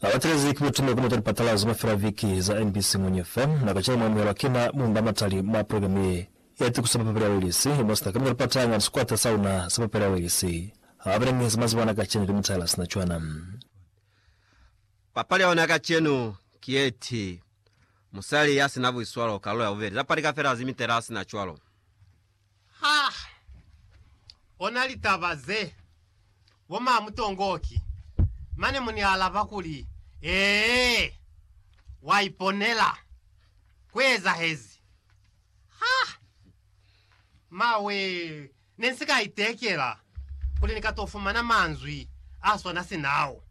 Na batelezi ki butuna ku meta lipatalazo mafela viki za mbc muñwi fa na ka cela mwa amuhelwa ki na muñwi ba matali mwa programe ye ya tikuso papapeli ya Welisi, mo sina kamita lipata hanga ni sikwata sa luna sa papeli ya Welisi. Ha ba bile mi za mazibo ana kacenu ki mutala sina cwana. Papali ya ona ya kacenu ki ye ti, Musali ya sina buiswalo, kalulo ya bubeli. Lapa li ka fela zimitela sina cwalo. Ha ona litaba ze, bo ma Mutongoki. Mane mu ni alaba kuli, Ee, wa iponela. Ku ezahezi. Ha! Ma wee, ne nsi ka itekela kuli ni ka to fumana manzwi a swana sina ao.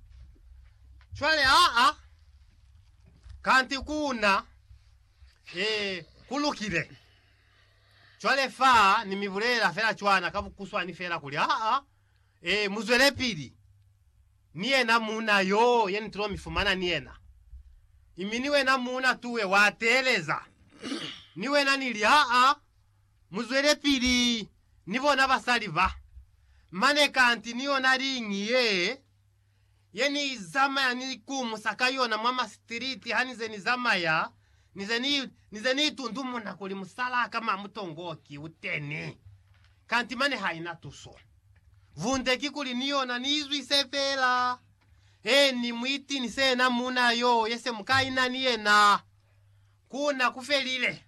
Cwale, aa, kanti ku na, ee, ku lukile. Cwale fa Ni mi bulelela fela cwana ka bukuswani fela kuli, aa, ee, mu zwelepili. Ni yena muuna yoo ye Ni tulo mi fumana ni yena. Imi ni wena muuna tuwe wa teeleza. Ni wena Ni li, aa, mu zwelepili ni bona basali ba. Mane kanti ni yona liñi yee. ye ni i zamaya ni ikumusa ka yona mwa masitiliti hanize ni zamaya, ni ze ni, ni ze ni itundumuna kuli musalaa ka mwa mutongo ki u teni. Kanti mane ha i na tuso. Vunde kikuli ni yona ni izwise fela. Ee, ni mu itinise yena muuna yo ye se mu ka ina ni yena. Ku na ku felile.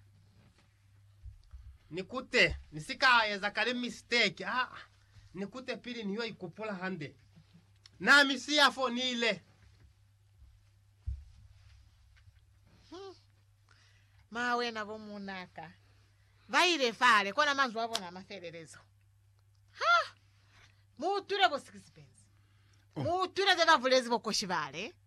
Ni kute, ni si ka eza kale misteki. Aa, ni kute pili ni yo ikupula hande. Na mi siya fo, ni ile. Hmm. Ma wena bo munaka. Ba ile fale, kona manzwi a bona a mafelelezo. Ha! Mu utwile bo Sixpence. Oh. Mu utwile ze ba bulezi bokoshi bale.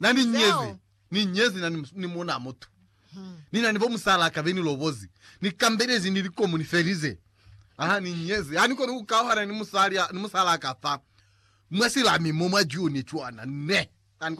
Na ni nyezi, ni nyezi na ni, ni muna mutu. Hmm. Ni na ni bo musala ka be ni lobozi. Ni kambelezi ni likomu ni felize. Aha, ni nyezi. Ha ni koni ku kauhana ni musali, ni musala ka fa. Mwa silami mo mwa June cwana. Ne.